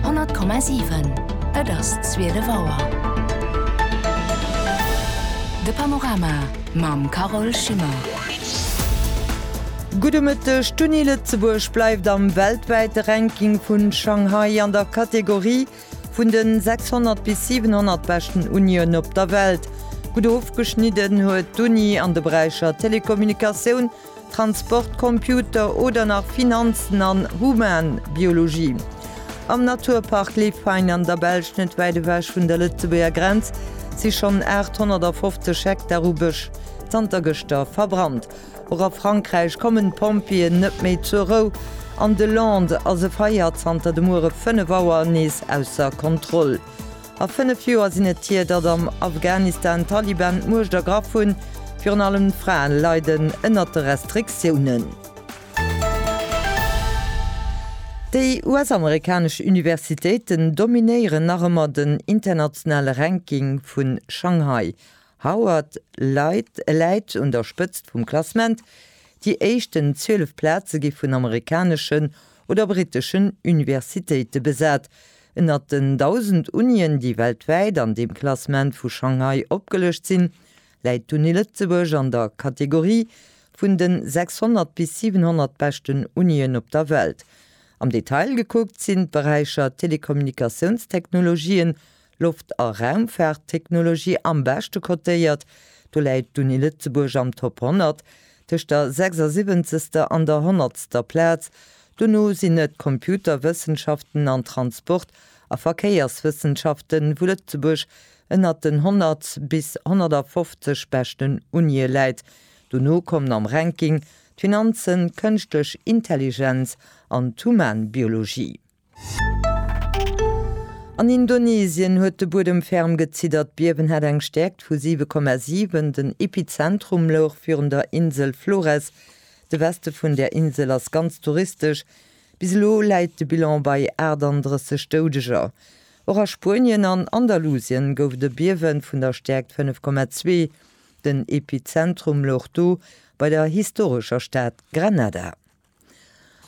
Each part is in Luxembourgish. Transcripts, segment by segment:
100,7 Et ass 12 Auer. De Panorama mam Carole Schimmer. Gudde Mëtteg. D'Uni Lëtzebuerg bleift am weltwäite Ranking vu Shanghai an der Kategorie vun de 600 bis 700 beschten Unien op der Welt. Gutt ofgeschnidden huet d'Uni an de Beräicher Telekommunikatioun, Transport, Computer oder nach Finanzen an Humanbiologie. Am Naturpark Lefein an der Belsch, net wäit ewech vun der Lëtzebuerger Grenz, si schonn 850 Hektar u Bësch zanter gëschter verbrannt. Och a Frankräich kommen d'Pompjeeën net méi zur Rou. An de Landes ass e Feier zanter de Muere 5 Auer nees ausser Kontroll. A fënnef Joer sinn et hier, datt am Afghanistan d'Taliban d'Muecht ergraff hunn. Virun allem d'Fraen leiden ënnert de Restriktiounen. Déi US-amerikanesch Universitéiten dominéieren nach ëmmer den internationale Ranking vu Shanghai. Howard läit un der Spëtzt vum Klassement. Déi éischten 12 Plaze gi vun amerikaneschen oder briteschen Universitéite besat. Ënnert den 1.000 Unien, déi weltwäit an deem Klassement vu Shanghai opgelëscht sinn, läit d'Uni Lëtzebuerg an der Kategorie vun de 600 bis 700 beschten Unien op der Welt. Am Detail gekuckt sinn d'Beräicher Telekommunikatiounstechnologien, Loft a Raumfaarttechnologie am beschte cotéiert. Do läit d'Uni Lëtzebuerg am Top 100, tëscht der 76. an der 100. Plaz, Dono sinn et Computerwëssenschaften an Transport a Verkéierswëssenschaften, wou Lëtzebuerg ënnert den 100 bis 150 beschten Unië läit. Dono kommen am Ranking d'Finanzen, d'Kënschtlech Intelligenz an d'Humanbiologie. An Indonesien huet de Buedem ferm geziddert. D'Biewen hat eng Stäerkt vu 7,7. Den Epizentrum louch virun der Insel Flores. De Weste vun der Insel ass ganz touristesch. Bis elo läit de Bilan bei 38 Doudeger. Och a Spuenien an Andalusien gouf et e Biewe vun der Stäerkt 5,2. Den Epizentrum louch do bei der historescher Stad Granada.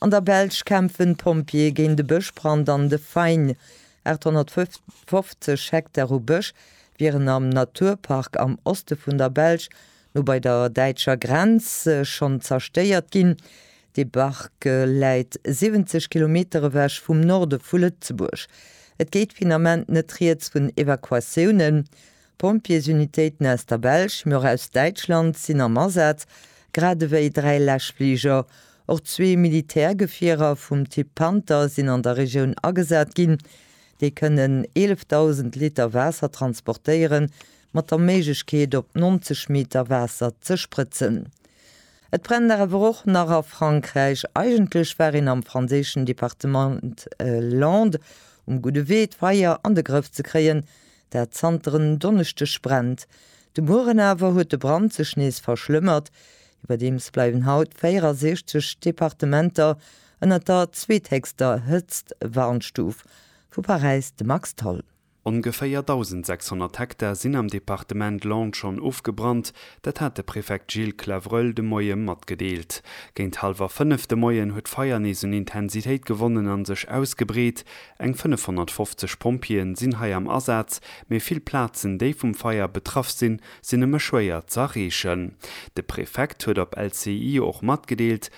An der Belsch kämpfen d'Pompjeeë géint e Bëschbrand an de Fain. 850 Hektar u Bësch wieren am Naturpark am Oste vun der Belsch No bei der däitscher Grenz schonn zerstéiert ginn. De Bark läit 70 Kilometer ewech vum Norde vu Lëtzebuerg. Et geet finament net rieds vun Evakuatiounen. Pompjeesunitéiten aus der Belsch, mee och aus Däitschland sinn am Asaz, grad ewéi dräi Läschfliger. Och zwee Militärgefierer vum Typ Panther sinn an der Regioun agesat ginn. Déi kënnen 11.000 Liter Waasser transportéieren, mat der Méiglechkeet op 90 Meter Waasser ze sprëtzen. Et brennt awer och nach a Frankräich. Eigentlech war een am franséischen Departement Landes um gudde Wee d'Feier an de Grëff ze kréien, dat zanter en Donneschdeg brennt. De Mueren awer huet de Brand sech nees verschlëmmert. Iwwerdeems bleiwen haut 64 Departementer ënnert der zweethéchster Hëtztwarnstuf vu Paräis, de Max Tholl. Ongeféier 1.600 Hektar sinn am Departement Landes schonn ofgebrannt. Dat hat de Prefekt Gilles Clavreul de Moie matgedeelt. Géint hallwer 5 de Moien huet d'Feier nees un Intensitéit gewonnen an sech ausgebreet. Eng 550 Pompjeeën sinn hei am Asaz, mee vill Plazen, déi vum Feier betraff sinn, sinn nëmme schwéier z'erreechen. De Prefekt huet op LCI och matgedeelt,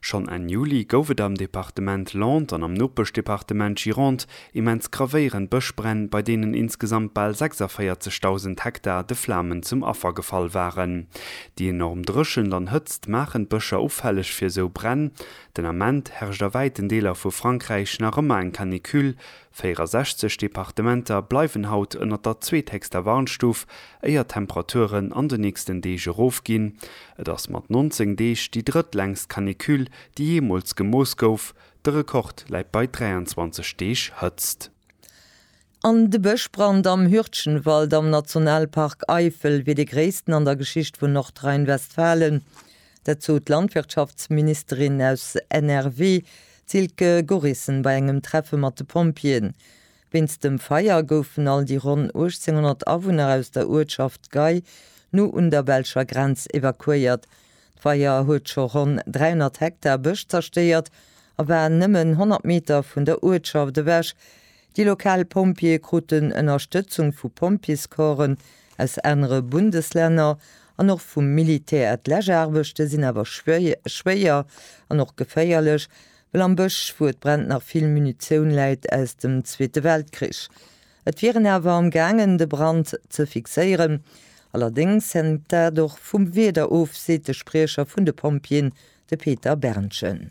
Schonn Enn Juli gouf et am Departement Landes an am Nopeschdepartement Gironde immens gravéierend Bëschbränn, bei deenen insgesamt bal 46.000 Hektar de Flamen zum Affer gefall waren. Déi enorm Dréchent an Hëtzt maachen d'Bëscher ufälleg fir esou Bränn. Den Ament herrscht a wäiten Deeler vu Frankräich nach ëmmer eng Canicule. 64 Departementer bleiwen haut ënnert der zweethéchster Warnstuf, éier d'Temperaturen an de nächsten Deeg erofginn. Et ass mat 19 Deeg déi drëttlängst Canicule, déi jeemools gemooss gouf. De Rekord läit bei 23 Deeg Hëtzt. An de Bëschbrand am Hürtgenwald am Nationalpark Eifel wier dee gréissten an der Geschicht vun Nordrhein-Westfalen. Dat sot d'Landwirtschaftsministerin aus NRW, d'Silke Gorissen, bei engem Treffe mat de Pompjeeën. Wéinst dem Feier goufen all déi ronn 1.800 Awunner aus der Uertschaft Gei no un der belscher Grenz evakuéiert. D'Feier huet scho ronn 300 Hektar Bësch zerstéiert a war nëmmen 100 Meter vun der Uertschaft ewech, Déi lokal Pompjeeë kruten Ënnerstëtzung vu Pompjeescorpsen aus anere Bundeslänner an och vum Militär. D'Läschaarbechte sinn awer schwéier an och geféierlech, well am Bësch, wou et brennt, nach vill Munitioun läit aus dem Zweete Weltkrich. Et wier een awer am gaangen, de Brand ze fixéieren. Allerdéngs hänkt dat och vum Wieder of, seet de Spriecher vun de Pompjeeën, de Peter Berndgen.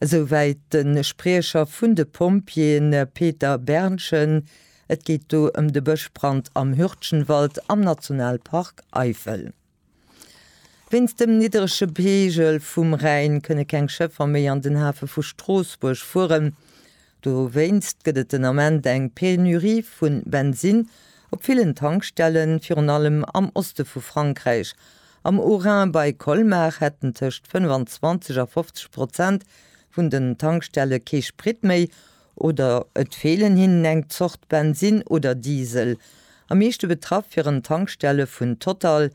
Esouwäit de Spriecher vun de Pompjeeën Peter Berndgen. Et geet do ëm de Bëschbrand am Hürtgenwald am Nationalpark Eifel. Wéinst dem niddrege Peegel vum Rhäin kënne keng Schëffer méi an den Hafe vu Stroossbuerg fueren. Dowéinst gëtt et den Ament eng Penurie vu Bensinn op villen Tankstellen, virun allem am Oste vu Frankräich. Am Haut-Rhin bei Colmar hätten tëscht 25 a 50 Prozent vun den Tankstelle kee Sprit méi oder et feelen hinnen eng Zort Bensinn oder Diesel. Am meeschte betraff wieren d'Tankstelle vun Total,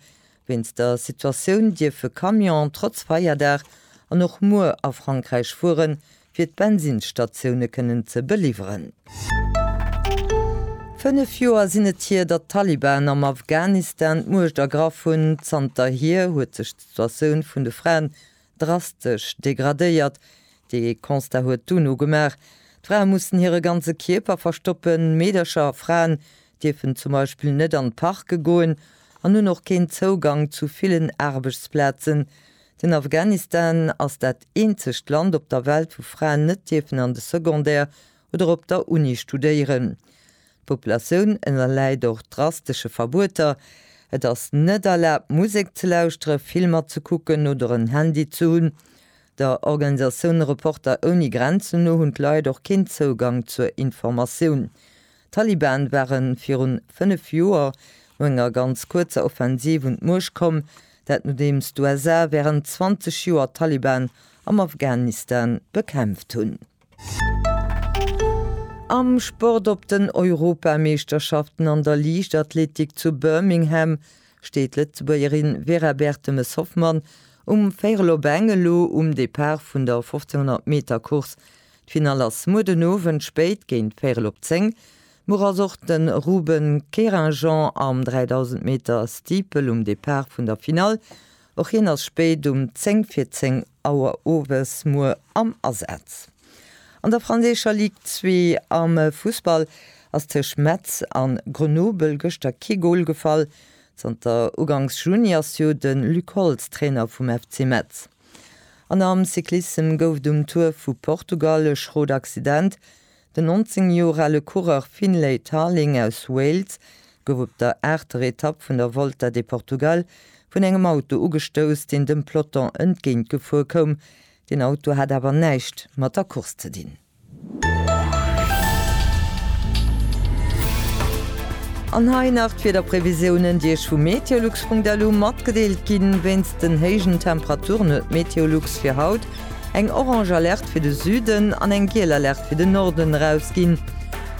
Wéinst der Situatioun dierfe Camionen trotz Feierdag an och muer a Frankräich fueren, fir d'Bensinnsstatioune kënnen ze beliwweren. Fënnef Joer sinn et hier, datt d'Taliban am Afghanistan d'Muecht ergraff hunn. Zanterhier huet sech d'Situatioun vun de Fraen drastesch degradéiert. Dee Constat huet d'UNO gemaach. D'Frae mussen hire ganze Kierper verstoppen, Meedercher a Fraen dierfen zum Beispill net an d'Parke goen an hunn och keen Zougang zu villen Aarbechtsplazen. Den Afghanistan ass dat eenzegt Land op der Welt, wou Fraen net dierfen an de Secondaire oder op der Uni studéieren. D'Populatioun ënnerläit och drastesche Verbueter, Et ass net erlaabt Musek ze lauschteren, Filmer ze kucken oder en Handy ze hunn. Der Organisatioun Reporter ouni Grenzen no hunn d'Leit och keen Zougang zur Informatioun. D'Taliban ware virun fënnef Joer no enger ganz kuerzer Offensiv un d'Muecht komm, dat nodeems d'USA wärend 20 Joer d'Taliban am Afghanistan bekämpft hunn. Am Sport, Op den Europameeschterschaften an der Liichtathletik zu Birmingham steet d'Lëtzebuergerin Vera Bertemes-Hoffmann um Véierel op Eng elo um Depart vun der 1500 Meter Course. D'Finall ass muer den Owend spéit géint Véierel op 10 Muer ass och de Ruben Kérinjean am 3000 Meter Steeple um Depart vun der Finall. Och hien ass spéit um 10 vir 10 Auer owes muer am Asaz. An der franséischer Ligue 2 am Fussball ass tëscht Metz an Grenoble gëschter kee Gol gefall. Zanter ugangs Juni ass jo de Luc Holtz Trainer vum FC Metz. An am Cyclissem gouf et um Tour vu Portugal e schrot Accident. Den 19 Joer ale Coureur Finlay Tarling aus Wales gouf op der aachter Etapp vun der Volta de Portugal vun engem Auto ugestouss, deen dem Peloton entgéint gefuer koum. Den Auto hat awer näischt mat der Course ze dinn. An hei nach d'Wiederprevisiounen, déi Iech vu meteolux.lu matgedeelt ginn. Wéinst den héijen Temperaturen huet Meteolux fir haut eng orange Alerte fir de Süden an eng giel Alerte fir de Norden erausginn.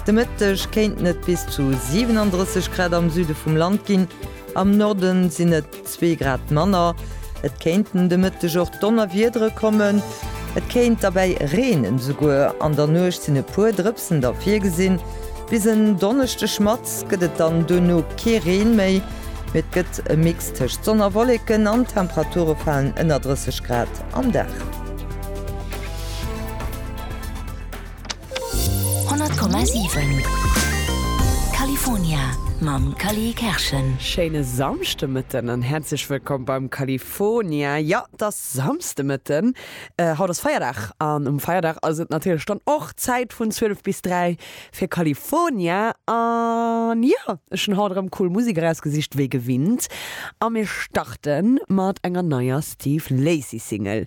De Mëtteg kéinten et bis zu 37 Grad am Süde vum Land ginn, am Norde sinn et zwee Grad manner. Et kéinten de Mëtteg och Donnerwiedere kommen, et kéint derbäi reenen. Esouguer an der Nuecht sinn e puer Drëpsen da virgesinn. Bis en Donneschdeg Matts gëtt et dann duerno kee Reen méi, mee et gëtt e Mix tëscht Sonn a Wolleken an d'Temperature falen ënner 30 Grad. Nacht an Dag. 100,7 California mam Cali Kerschen. Schéine Samschdemëtten an häerzlech wëllkomm beim California. Jo, et ass Samschdemëtten, haut ass Feierdag an um Feierdag ass et natierlech dann och Zäit vun 12 bis 3 fir California. An jo, ech hunn haut erëm cool Musek erausgesicht wéi gewinnt a mir starte mat enger neier Steve Lacy Single.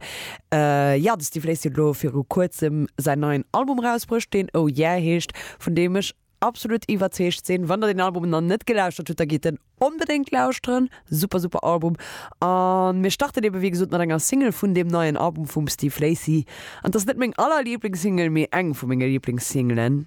Jo, de Steve Lacy huet elo viru kuerzem säin neien Album erausbruecht, deen Oh Yeah heescht, vun deem ech absolut iwwerzeegt sinn. Wann der deen Album nach net gelauschtert hutt, da gitt en onbedéngt lauschteren. Super, super Album. A mir starten eebe wéi gesot mat enger Single vun deem neien Album vum Steve Lacy. An 't ass net meng allerlieblings-Single, mee eng vu menge Lieblings-Singelen.